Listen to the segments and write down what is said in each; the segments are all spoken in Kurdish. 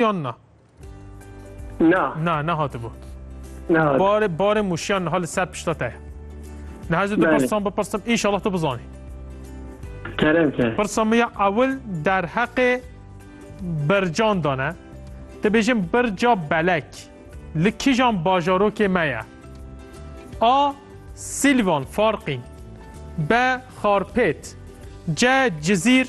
yan na? Na. Na, nehatibû. Nehat. Barê, barê mûşiyan niha li ser pişta te ye. Niha ez ê tu Belê. pirsan bipirsim, înşallah tu bizanî. Kerem ke. Pirsa min ya ewil derheqê bircan da ne. Te bêjin birca belek li kijan bajarokê me ye. A. Silvan Farqîn B. Xarpêt C. Cizîr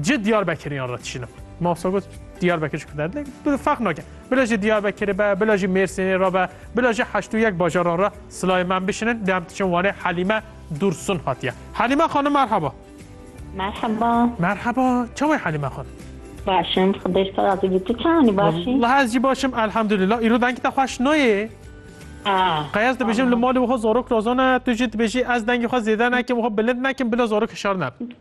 Cid Diyarbekiriyan re tişînim. Mafsa got Diyarbekir ji ku derdê bi feq nake. Bila jî Diyarbekirê be, bila jî Mêrsînê re be, bila jî heşt û yek bajaran re silayê me em bişinin dê em tiçin Wanê Helîme Dursun hatiye. Helîme xanim merheba. Merhaba. Merhaba. Çawa ye Helîme xanim? Başım, xıdır sazı bitti çani başım. Allah ez jî başim elhamdülillah. Îro dengî te xweş nayê. Qeyaz dibêjim li malê wiha zarok lazan e, tu jî dibêjî ez dengê xwe zêde nekim, wiha bilind nekim bila zarok hişar nebe.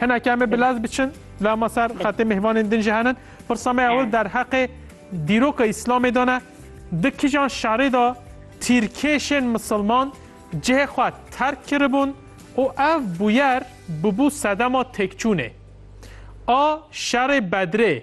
Hinekî em ê bi lez biçin lama ser xetê mêvanên din jî henin. Pirsa me ew derheqê dîroka Îslamê de ne. Di kijan şerê de tîrkêşên misilman cihê xwe terk kiribûn û ev bûyer bûbû sedema têkçûnê a şerê Bedrê.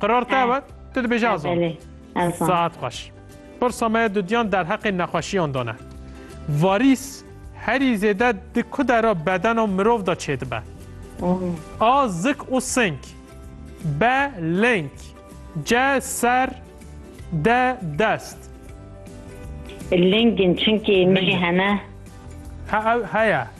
Qirar te ew e? Tu dibêjî Azam. Belê. Azam. Saet xweş. Pirsa me ya dudiyan derheqê nexweşiyan dane. Varîs herî zêde di ku de ra bedena mirov de çêdibe. A zik û sink. B link. C ser. D dest. Lingin çünkü milli hene. Ha ew heye.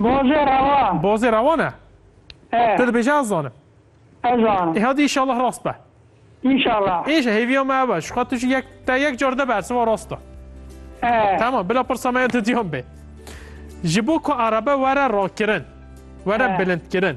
Bozê rewan. Bozê rewan e? E. Tu dibêje ez zanim. Ez zanim. E hadi inşallah rast be. İnşallah. İnşallah hêviya me ev e. Ji xwe tu jî yek te yek car de bersiva rast e. E. Tamam bila pirsa me ya didiyan bê. Ji bo ku erebe were rakirin, were bilindkirin.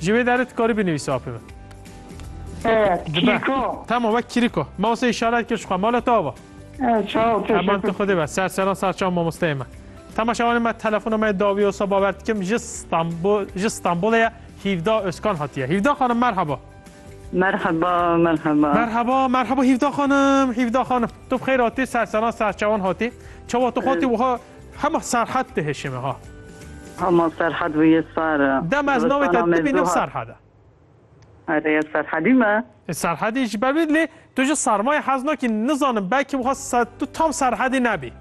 Ji vê derê tu karî binivîsî apê min. Dibe. Tamam wek kiriko. Mawse îşaret kir ji xwe mala te ava. Heman tu xwedê be. Ser seran sar çav mamosteyê me. Tema şewanê me telefona me dawî olsa bawer dikim ji Stanbul ji Stanbulê ye Hîvda Özkan hatiye. Hîvda xanim merhaba. Merhaba, merhaba. Merhaba, merhaba Hîvda xanim, Hîvda xanim. Tu bi xeyr hatî, serseran serçewan hatî. Çawa tu hatî wiha Hema Serhat dihişê me ha. Hema Serhat bu yê sar e. Dema ez navê te dibînim Serhat e. Erê ez Serhadî me? E Serhadî ji ber wî lê tu ji sarmayê hez nakî nizanim belkî wexwest tu tam Serhadî nebî.